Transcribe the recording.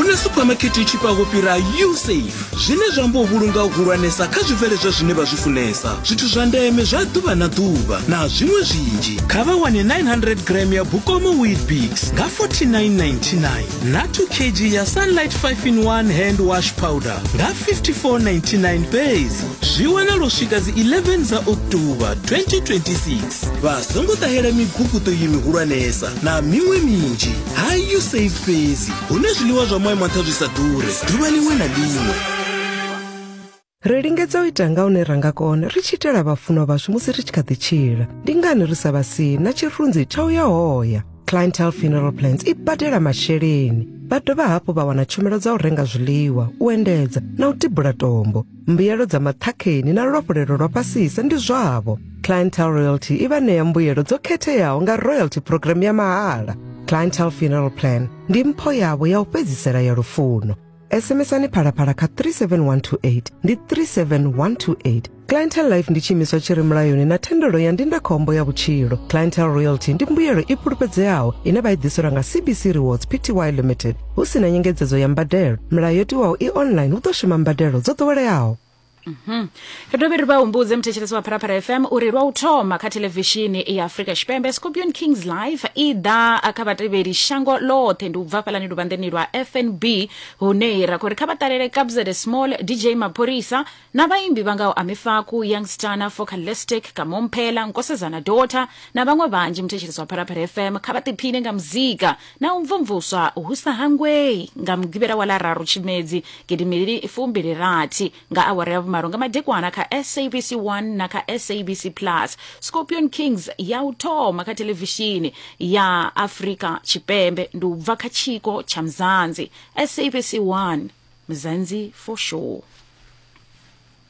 hu na suphamakhethe i tshifhaho fhira usafe zwine zwa amba u vhulunga u hulwanesa kha zwibveledzwa zwine vha zwi funesa zwithu zwa ndeme zwa ḓuvha na ḓuvha na zwiṅwe zwinzhi kha vha wane 900 gram ya bukomo wheat bigs nga 4999 na 2 kg ya sunlight 5 in 1 hand wash powder nga 5499 fhedzi zwi wana lwo swika dzi 11 dza oktoba 2026 vha songo ṱahela miguguṱo yi mihulwanesa na miṅwe minzhi ha usafe fhedzi hune zwiḽiwa zwa moya maṱha zwi sa ḓure ḓuvha ḽiṅwe na ḽiṅwe ri lingedza u ita nga hune ra nga kona ri tshi itela vhafunwa vhashu musi ri tshi kha ḓi tshila ndi ngani ri sa vha si na tshirunzi tsha u ya hoya clientel funeral plans i badela masheleni vha dovha hafhu vha wana tshumelo dza u renga zwiḽiwa u endedza na u tibula tombo mbuyelo dza maṱhakheni na luafhulelo lwa fhasisa ndi zwavho clientel royalty i vha ṋea mbuyelo dzo khetheaho nga royalty program ya mahala clientel funeral plan ndi mpho yavho ya u fhedzisela ya lufuno sms-ani phalaphala kha 37128 ndi 37128 clientel life ndi tshiimiswa tshi re mulayoni na thendelo ya ndindakhombo ya vhutshilo clientel royalty ndi mbuyelo i fhulufhedzeaho ine vha i ḓiselwa nga cbc rewards pty limited hu si na nyengedzedzo ya mbadelo milayo yo tiwaho i online hu ḓo shuma mbadelo dzo ḓoweleaho Mhm. ri dovhe ri vha humbudze muthetshelesi wa pharapara fm uri lwa u thoma kha thelevishini ya afrika tshipembe scorpion kings live i ḓa kha vhatevheli shango ḽoṱhe ndi u bva fhalani luvhanḓeni lwa fnb hune ra khou ri kha vha ṱalele kabzede small dj mapholisa na vhaimbi vha ngaho amifaku youngstana focalistic kamomphela nkosezana dota na vhaṅwe vhanzhi muthetshelesi wa pharapara fm kha vha ḓiphine nga muzika na u mvumvuswa hu sa hangwei nga mugivhela wa ḽa raru tshimedzi gidimili fumbili rathi nga awara ya vhumalo nga madekwana kha sabc 1 na kha sabc plus scorpion kings ya u thoma kha thelevishini ya afrika tshipembe ndi u bva kha tshiko tsha mzanzi sabc 1 mzanzi for sure